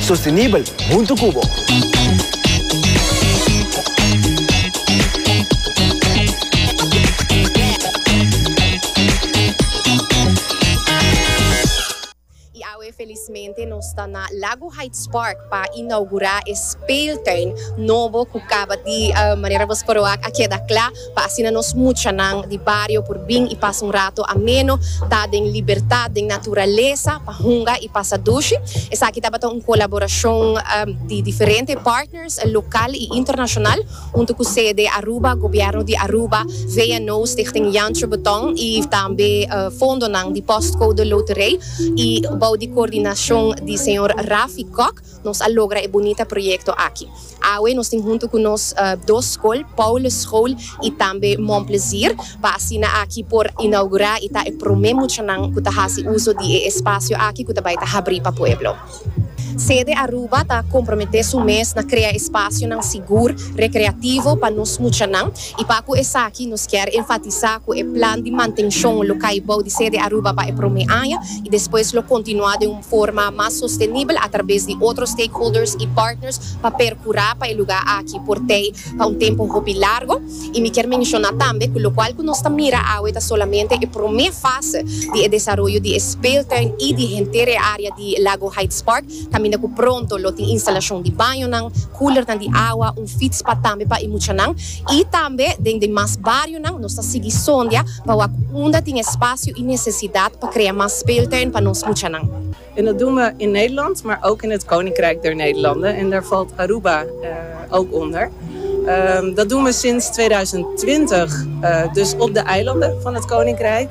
Sostenibel huntu cu bo. Y awe felizmente nos ta na Lago Heights Park pa inaugura e speeltuin nobo cu caba di, manera bo spero a keda cla. pa asina nos muchanan di bario por bin i pasa un rato ameno, ta den libertat den naturalesa pa hunga i pasa dushi. Esaki tabata un colaboracion di diferente partners local i internacional hunto cu sede Aruba, Gobierno di Aruba, VNO, Stichting Jancho Beton i tambe fondonan di Postcode Loterij i bou di coordinacion di señor Rafi Kok. Nos a logra e bunita proyekto aki. Awe nos tin huntu ku nos dos skol, Paulus School i tambe Monplezier, pa asina aki por inaugurá i ta e promé muchanan ku ta hasi uso di e espasio aki ku ta bai ta habrí pa pueblo. Sede Aruba ta komprometé su mes na krea espasionan sigur, rekreativo pa nos muchanan I pa ku esaki nos kier enfatisá ku e plan di mantenshon lo kai bou di sede Aruba pa e promé aña i despues lo kontinuá den un forma mas sostenibel atrabes di otro stakeholders i partners pa perkurá pa e lugá aki por tei pa un tempu hopi largo. I mi kier menshoná tambe ku lokual ku nos ta mira awe ta solamente e promé fase di e desaroyo di e speeltuin i di henter e área di Lago Heights Park, Kaminda ku pronto lo tin instalashon di bañonan, kulernan di awa, un fits pa tambe pa e muchanan. I tambe den den mas barionan nos ta sigui sondia pa wak unda tin espasio i nesesidat pa krea mas speeltuin pa nos muchanan. En dat doen we in Nederland, maar ook in het Koninkrijk der Nederlanden en daar valt Aruba ook onder. Dat doen we sinds tweeduizend twintig, dus op de eilanden van het Koninkrijk.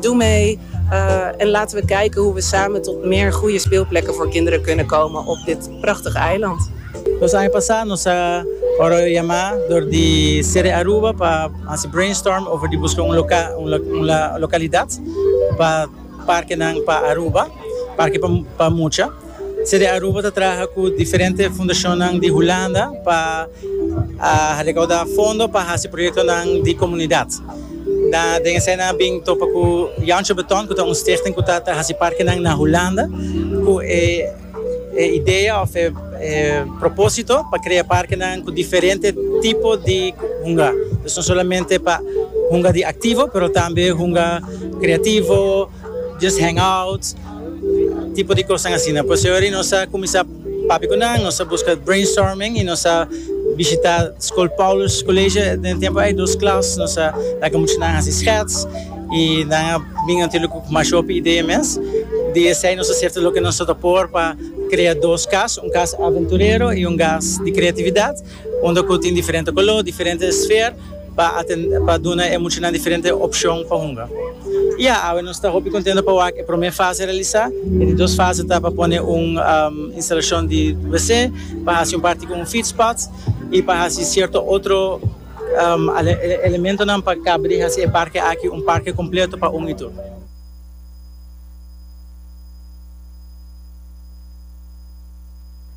Doe mee en laten we kijken hoe we samen tot meer goeie speelplekken voor kinderen kunnen komen op dit prachtig eiland. Dos aña pasá nos a wòrdu yamá dor di City Aruba pa hasi brainstorm over di buska un un lokalidat pa parkenan pa Aruba, parke pa mucha. Cde Aruba ta traha cu diferente fundacionnan di Hulanda pa recauda fondo pa haci proyectonan di comunidad. Nan den esey nan a bin topa cu Jantje Beton cu ta un stichting cu ta haci parkenan na Hulanda cu e idea of e propósito pa crea parkenan cu diferente tipo di hunga. Nos no solamente pa hunga di activo pero tambe hunga creativo. just hang out, tipo di cosnan asina. Pues hoy nos a cuminsa papia cu nan, nos a busca brainstorming y nos a bishita School Paulus College. Den e tempo ay dos klas, nos a laga mucha nan haci schets y nan a bin natuurlijk cu mas hopi idea mes. Di esey nos a serta loke nos ta por pa crea dos kas, un kas aventurero y un kas di creatividad. Unda cu tin diferente color, diferente sfeer pa pa duna e muchanan diferente opcion pa hunga. Ya, awe nos ta hopi contento pa wak e prome fase realisa. E di dos fase ta pa pone un instalacion di wc, pa haci un parti cu un feed spot y pa haci cierto otro elementonan pa caba di haci e parke aki un parke completo pa un y tur.